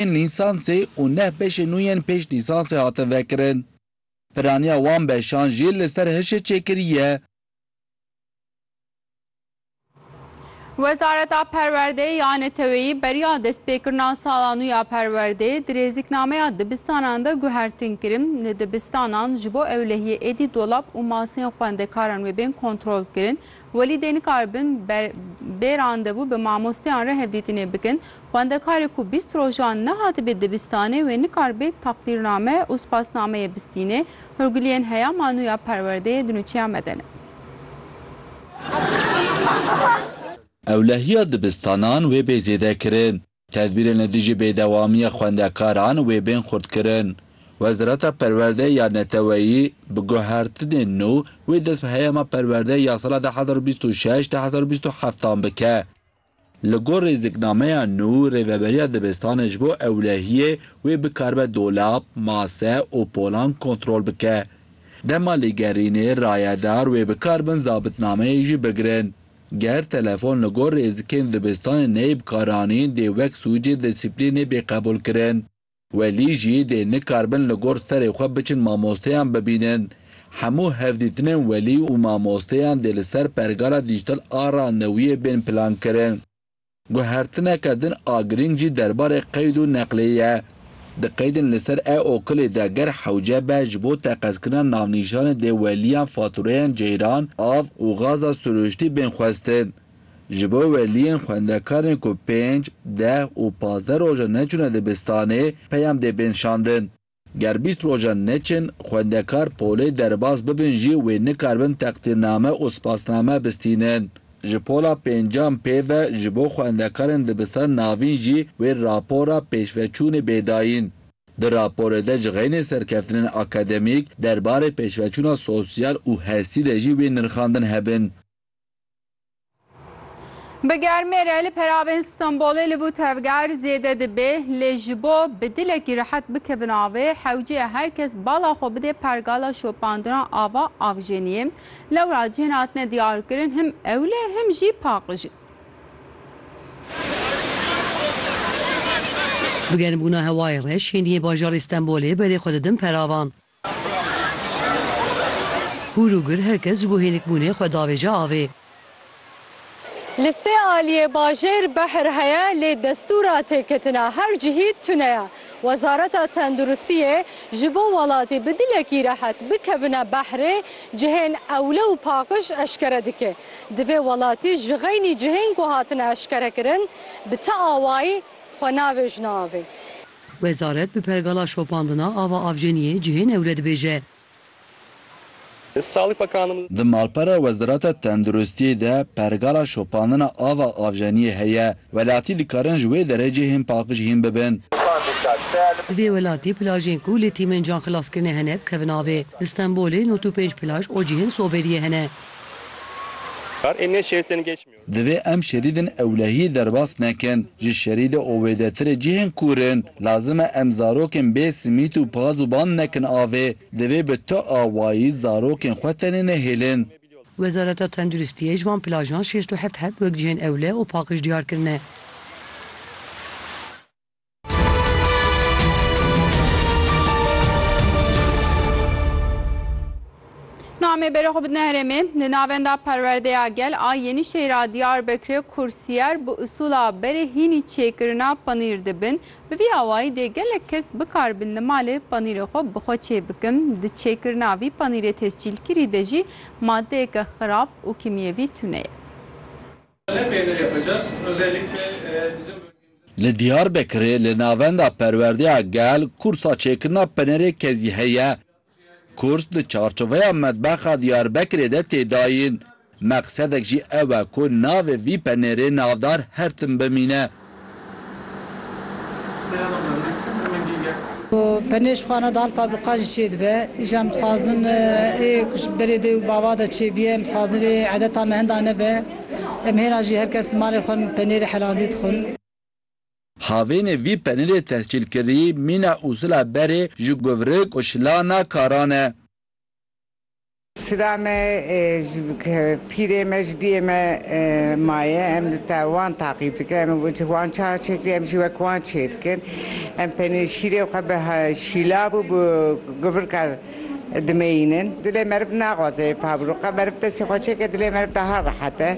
yên lîsansê û neh beşên nû yên pêş lîsansê hatin vekirin. Piraniya wan beşan jî li ser hişê çêkirî ye. Wezareta Perwerdeyê ya Neteweyî beriya destpêkirina sala nû ya perwerdeyê dirêzîknameya dibistanan de guhertin kirin. Li dibistanan ji bo ewlehiyê êdî dolap û masên xwendekaran wê bên kontrolkirin Welî dê nikaribin ber bê randevû bi mamosteyan re hevdîtinê bikin. Xwendekarê ku bîst rojan nehatibe dibistanê wê nikaribê teqdîrname û spasnameyê bistînê. Hurgiliyên heya manûya perwerdeyê di nûçeya me de ne. Ewlehiya dibistanan wê bê zêdekirin. Tedbîrên li dijî bêdewamiya xwendekaran wê bên xurtkirin. Wezareta Perwerdeyê ya Neteweyî bi guhertinên nû wê dest bi heyama perwerdeyê ya sala du hezar û bîst û şeş du hezar û bîst û heft an bike. Li gor rêziknameya nû rêveberiya dibistanê ji bo ewlehiyê wê bikaribe dolap, mase û polan kontrol bike. Dema lêgerînê, rayedar wê bikaribin zabitnameyê jî bigirin. Ger telefon li gor rêzikên dibistanê neyê bikaranîn dê wek sûcê disîplînê bê qebûlkirin. Welî jî dê nikaribin li gor serê xwe biçin mamosteyan bibînin. Hemû hevdîtinên welî û mamosteyan dê li ser pergala dîjtal a randevûyê bên plankirin. Guhertineke din a girîng jî derbarê qeyd û neqlê ye. Di qeydên li ser e okulê de ger hewce be ji bo teqezkirina navnîşanê dê weliyan fatureyan ceyran, av û gaza sirûştî bên xwestin. Ji bo weliyên xwendekarên ku pênc, deh û pazdeh rojan neçûne dibistanê peyam dê bên şandin. Ger bîst rojan neçin, xwendekar polê derbas bibin jî wê nikaribin teqdîrname û spasname bistînin. Ji pola pêncan pê ve ji bo xwendekarên dibistan navîn jî wê rapora pêşveçûnê bê dayîn. Di raporê de ji xeynê serkeftinên akademîk derbarê pêşveçûna sosyal û hestî de jî wê nirxandin hebin. Bi germê re li peravên Stenbolê li bû tevger zêde dibê lê ji bo bi dilekî rehet bikevin avê hewciye her kes bala xwe bidê pergala şopandina ava avjeniyê. Lewra cihên hatine diyarkirin him ewlê him jî paqijî. Bi germbûna hewayê re şêniyê bajarê Stenbolê berê xwe didin peravan. Hûr û gir her kes ji bo hênikbûnê xwe davêje avê. Li sê aliyê bajêr behr heye lê destûra têketina her cihî tune ye. Wezareta Tenduristiyê ji bo welatî bi dilekî rehet bikevine behrê cihên ewle û paqij eşkere dike. Divê welatî ji xeynî cihên ku hatine eşkerekirin bi ti awayî xwe navêjine avê. Wezaret bi pergala şopandina ava avjeniyê cihê newre dibêje. Di malpera Wezareta Tenduristiyê de pergala şopandina ava avjeniyê heye. Welatî dikarin ji wê derê cihên paqij hîn bibin. Di vê welatî plajên ku li tîmên canxilaskirine hene bikevin avê. Li Stenbolê nod û pênc plaj û cihên soberiyê hene. Divê em şerîdên ewlehiyê derbas nekin. Ji şerîdê owêdetirê cihên kûr in. Lazim e em zarokên bê simît û paz û bang nekin avê. Divê bi tu awayî zarokên xwe tenê nehêlin. Wezareta Tenduristiyê ji van plajan şêst û heft heb wek cihên ewle û paqij diyar kirine. Namê bere xwe bidine herêmê li navenda perwerdeya gel a Yenîşehîra Diyarbekirê kursîyer bi usûla berê hînî çêkirina panîr dibin. Bi vî awayî dê gelek kes bikaribin li malê panîrê xwe bi xwe çê bikin. Di çêkirina vî panîrê tescîlkirî de jî madeyeke xirab û kîmyevî tune ye. Li Diyarbekirê li navenda perwerdeya gel kursa çêkirina penerê kezî heye. Kurs di çarçoveya Medbexa Diyarbekirê de tê dayîn. Meqsedek jî ew e ku navê vî penerê navdar her tim bimîne. Benêj xwe ne dal fabrika jî çê dibe. Îja em dixwazin ê ku ji berê dê û bava de çê bîye. Em dixwazin vê edeta me henda nebe. Em hêna jî her kes li malê xwe penêrê helandî dixwin. Havênê vî penêrê tehcîlkirî mîna usula berê ji guvrik û şilana karan e. Sira me ji pîrê me ji diyê me maye em li te wan taqîb dikin em ji wan çar çêdikin em jî wek wan çêdikin em penê şîrê û xwe bi şîlav û bi guvirka dimeyînin dilê meriv naxwaze ev pabirû qe meriv destê xwe çêke dilê meriv daha rehet e.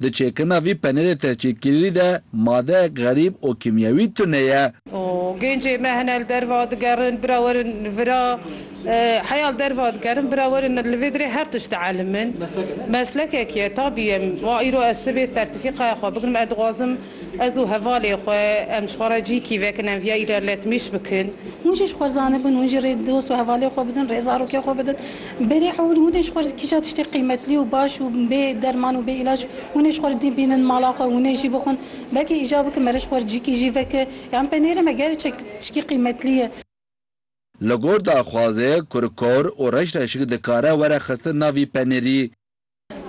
Di çêkirina vî penêrê tehcîrkirîrî de madeyek xerîb û kîmyewî tune ye. Û gêncê me hene li derva digerin, bira werin vira, heya li derva digerin, bira werin li vê dirê her tişt dielmin. Meslekek ye, tabî ye. Wa îro ez sibê sertîfîkaya xwe bigrim, ez dixwazim, Ez û hevalê xwe, em ji xwe re cî kî vekin, em viya îrar letmîş bikin. Hûn jî ji xwe zanibin, hûn jî rê dost û hevalê xwe bidin, rê zarokê xwe bidin. Berê hewil hûn ê ji xwe re kîja tiştê qîmetlî û baş û bê derman û bê îlac hûn ê ji xwe re dî bînin mala xwe hûn ê jî bixwin. Belkî îcar bikin mere ji xwe re cî kî jî veke. Yan penêrê me gerê çek tiştî qîmetlî ye. Li gor daxwazê, kurikor û reşreşik dikare were xistin nav vî penêrî.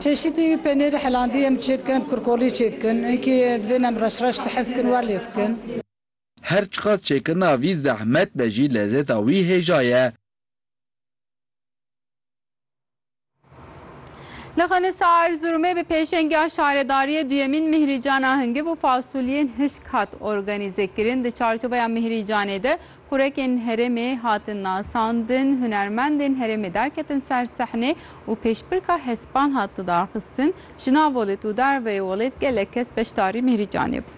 Çeşîtî wî penêrî helandî em çê dikin, em kurkolî çê dikin, hinkî dibên em reş reş tihiz dikin wer lê dikin. Her çiqas çêkirina vî zehmet be jî lezeta wî hêja ye. Li Xinisa Erzurumê bi pêşengiya şaredariyê duyemîn mihrîcana hingiv û fasuliyên hişk hat organîzekirin. Di çarçoveya mihrîcanê de Xurekên herêmê hatin nasandin, hunermendên herêmê derketin ser sehnê û pêşbirka hespan hat lidarxistin, ji nav welêt û derveyê welêt gelek kes beşdarî Mîhrîcanê bûn.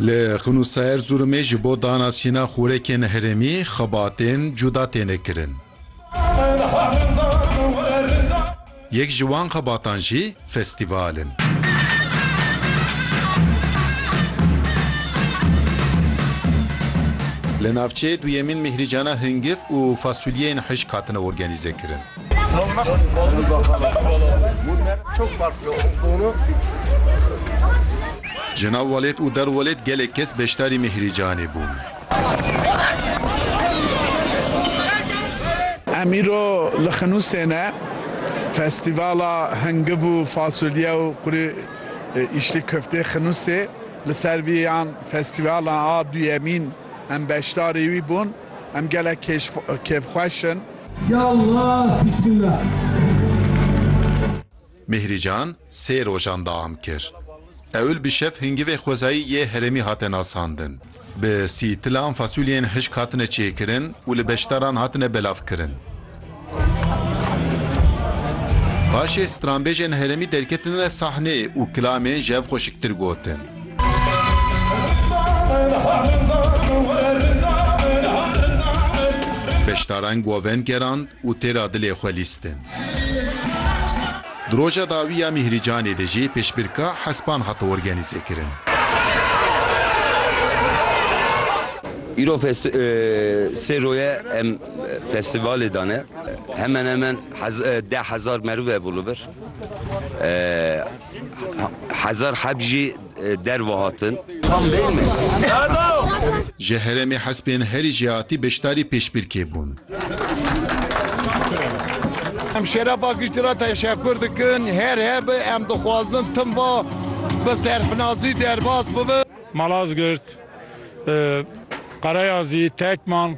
Li Xunû Sayerzûrumê ji bo dana sîna xurekên herêmî xebatên cuda têne kirin. Yek ji wan xebatan jî festîval in. Li navçeyê duyemîn Mihrîcana Hingif û Fasulyeyên Hişk hatine organîzekirin. Ji nav welêt û derwelêt gelek kes beşdarî Mihrîcanê bûn. Em îro li Xinûsê ne. Festîvala Hingiv û Fasulye û Qurê Îşlî Koftê Xinûsê li ser vî yan festîvalan a duyemîn em beşdarî wî bûn. Em gelek kêfxweş in. Ya Allah Bismillah. Mîhrîcan sê rojan deam kir. Ewil bi şev hingivê xwezayî yê herêmî hate nasandin. Bi sî tilan fasuliyên hişk hatine çêkirin û li beşdaran hatine belavkirin. Paşê stranbêjên herêmî derketine sahnê û kilamên ji hev xweşiktir gotin. Beşdaran govend gerand. Û têra dilê xwe lîstin. Di roja dawî ya Mîhrîcanê de jî pêşbirka hespan hat organîzekirin. Îro sê roje em festîvalê dane. Hemen hemen deh hezar meriv hebû li vir. Hezar heb jî. derve hatin. Tam değil mi? Ji herêmê hespên herî jêhatî beşdarî pêşbirkê bûn. Em şêra paqijtî re teşekur dikin. Her hebe em dixwazin tim va bi serfinazî derbas bibe. Malazgirt, Qereyazî, Tekman.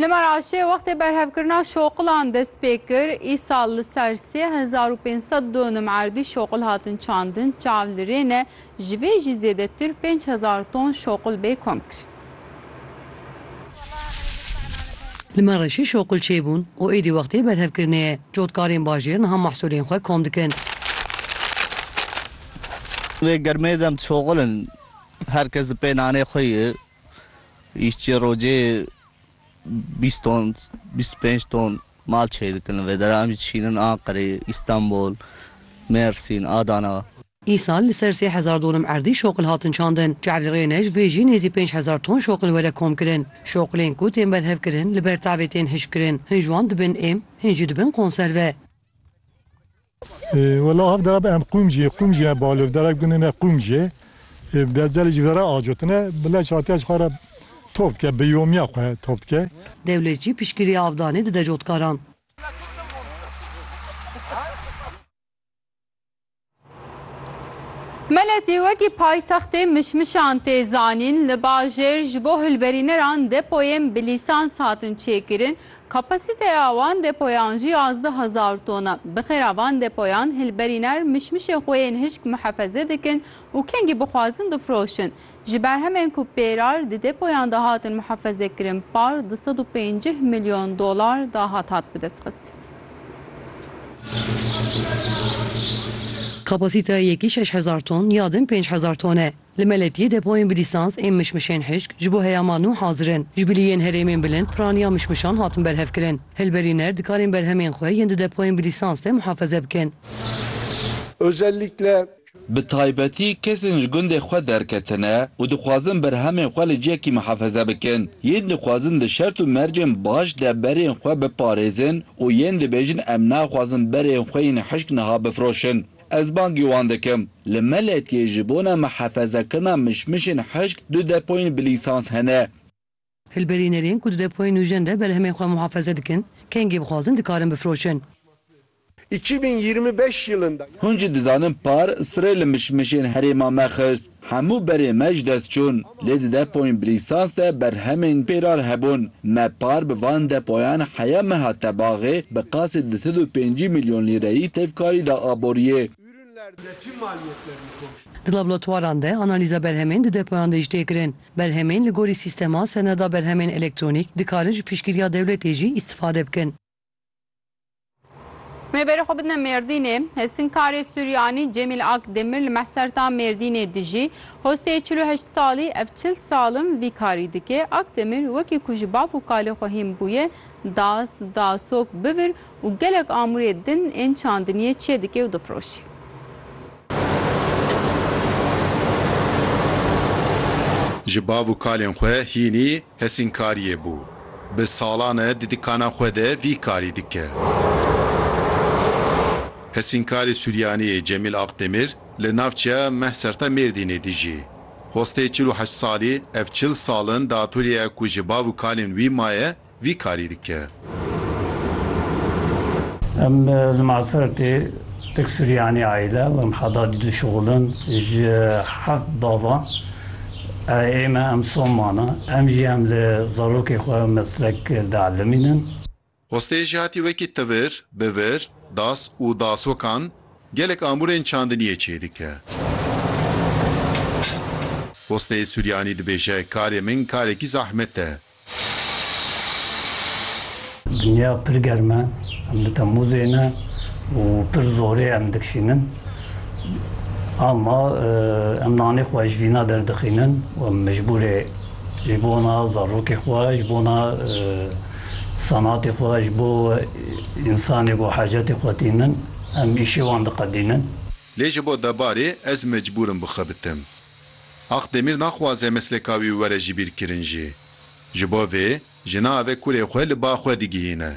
Li Meraşê wextê berhevkirina şoqilan dest pê kir. Îsal li ser sê hezar û pênc sed donim erdî şoqil hatin çandin. Çav li rê ne, ji vê jî zêdetir pênc hezar ton şoqil bê komkirin. Li Meraşê şoqil çêbûn û êdî wextê berhevkirinê ye. Cotkarên bajêr niha mehsulên xwe kom dikin. Di vê germê de em dişoqilin. Her kes di pê nanê xwe ye. Îşçê rojê bîst ton, bîst û pênc ton mal çêdikin li vê dere. Em jî dişînin Anqerê, Îstanbul, Mêrsîn, Adana. Îsal li ser sê hezar donum erdî şoqil hatin çandin. Çavlî Rênej vê jî nêzî pênc hezar ton şoqil were komkirin. Şoqilên ku tên berhevkirin li ber tavê tên hişkkirin. Hin ji wan dibin êm, hin jî dibin konserve. Wela hev dere bi em qûm jî qûm jî ne balof derek bûne ne qûm jî bezelê ji vera acotine bi leş hatiye ji xwe re top dike bi yomiya xwe top dike. Dewlet jî piştgirî avdanê dide cotkaran. Meletî wekî paytextê mişmişan tê zanîn, li bajêr ji bo hilberîneran depoyên bi lîsans hatin çêkirin, Kapasîteya wan depoyan jî yazdeh hezar ton e. Bi xêra van depoyan hilberîner mişmişê xwe yên hişk muhefeze dikin û kengî bixwazin difiroşin. Ji berhemên ku pêrar di depoyan de hatin muhefezekirin par du sed û pêncîh milyon dolar dahat hat bidestxistin. Kapasîteya yekî şeş hezar ton ya din pênc hezar ton e. Li Meletiyê depoyên bi lîsans ên mişmişên hişk ji bo heyama nû hazir in. Ji bilî yên herêmên bilind piraniya mişmişan hatin berhevkirin. Hilberîner dikarên berhemên xwe yên di depoyên bi lîsans de muhafeze bikin. Bi taybetî kesên ji gundê xwe derketine û dixwazin berhemên xwe li cihekî muhafeze bikin. Yên dixwazin di şert û mercên baş de berên xwe biparêzin û yên dibêjin em naxwazin berên xwe yên hişk niha bifiroşin. Ez bangî wan dikim. Li Meletiyê ji bona mihefezekirina mişmişên hişk du depoyên bi lîsans hene. Hilberînerên ku di depoyên nûjen de berhemên xwe muhefeze dikin, kengê bixwazin dikarin bifroşin. Hûn jî dizanin par sirê li mişmişên herêma me xist. Hemû berê me ji dest çûn, lê di depoyên bi lîsans de berhemên pêrar hebûn. Me par bi van depoyan heya me hat tebaxê bi qasê du sed û pêncî milyon lîreyî tevkarî da aboriyê. Di laboratwaran de analîza berhemên di depoyan de jî tê kirin. Berhemên li gorî sîstema seneda berhemên elektronîk dikarin ji piştgiriya dewletê jî îstifade bikin. Me berê xwe bidine Mêrdînê. Hêsinkarê Suryanî Cemîl Ak Demir li Mehserta Mêrdînê dijî. Hostê çil û heşt salî ev çil sal in vî karî dike. Ak Demir wekî ku ji bav û kalê xwe hîn bûye das, dasok, bivir û gelek amûrê din ên çandiniyê çêdike û difiroşe. Ji bav û kalên xwe hînî hesînkariyê bû. Bi salan e di dikana xwe de vî karî dike. Hesînkarê Suryaniyê Cemîl Akdemir li navçeya Mehserta Mêrdînê dijî. Hostê çil û heşt salî ev çil sal in di atolyeya ku ji bav û kalên wî maye Vî karî dike. Em li Masertê tek Suryanî aîle û em heda dî dişuxulin ji heft bavan. Aîleyê me em Soman e. Em jî em li zarokê xwe meslek dielîmînin. Hostê jî hatî wekî tivir, bivir, das û dasokan gelek amûrên çandiniyê çêdike. Hostê Suryanî dibêje karê min karekî zahmet e. Dinya pir germ e, em di Temmûzê ne û pir zorê em dikişînin. Ama em nanê xwe ji vîna derdixînin û em mecbûrê ji bona zarokê xwe, ji bona senatê xwe, ji bo însanê ku hacetê xwe tînin em îşê wan diqedînin. Lê ji bo debarê ez mecbûr im bixebitim. Aq Demîr naxwaze mesleka wî were jibîrkirin jî. Ji bo vê ji na ve kurê xwe li ba xwe digihîne.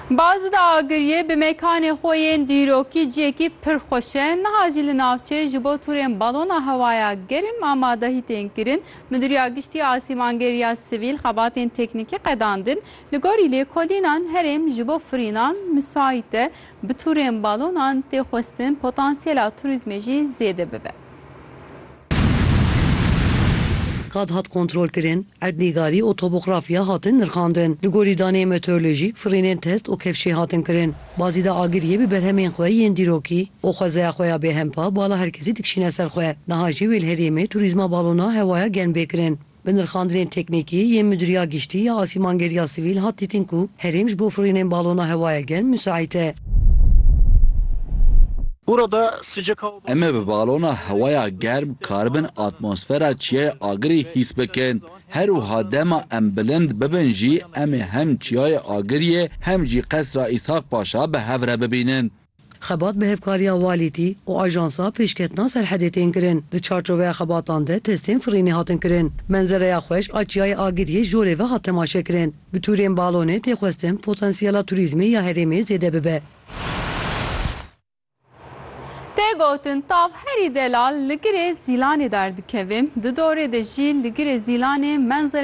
Bazida Agiriyê bi mekanê xwe yên dîrokî ciyekî pir xweş e. Niha jî li navçeyê ji bo tûrên balona hewaya germ amadehî tên kirin. Midûriya Giştî ya Asîmangeriya Sivîl xebatên teknîkî qedandin. Li gorî lêkolînan herêm ji bo firînan misayît e. Bi tûrên balonan tê xwestin potansiyela turîzmê jî zêde bibe. Qad hat kontrolkirin, erdnîgarî û topografya hatin nirxandin. Li gorî daneyên meteorolojîk firînên test û kevşê hatin kirin. Bazîda Agiriyê bi berhemên xwe yên dîrokî û xwezeya xwe ya bêhempa bala herkesî dikişîne ser xwe. Niha jê wê li herêmê turîzma balona hewaya germ bê kirin. Bi nirxandinên teknîkî yên Midûriya Giştî ya Asîmangeriya Sivîl hat dîtin ku herêm ji bo firûyînên balona hewaya germ misaît e. Em ê bi balona hewaya germ karibin atmosfera çiyayê agirî hîs bikin. Her wiha dema em bilind bibin jî em ê hem çiyayê agiriyê hem jî Qesra Îshaq Paşa bi hev re bibînin. Xebat bi hevkariya walîtî û ajansa pêşketina serhedê tên kirin. Di çarçoveya xebatan de testên firînê hatin kirin. Menzereya xweş a Çiyayê Agiriyê ji orê ve hat temaşekirin. Bi tûrên balonê tê xwestin potansiyela turîzmê ya herêmê zêde bibe. Tê gotin tav herî delal li girê zîlanê derdikeve, di dorê de jî li girê zîlanê menzereya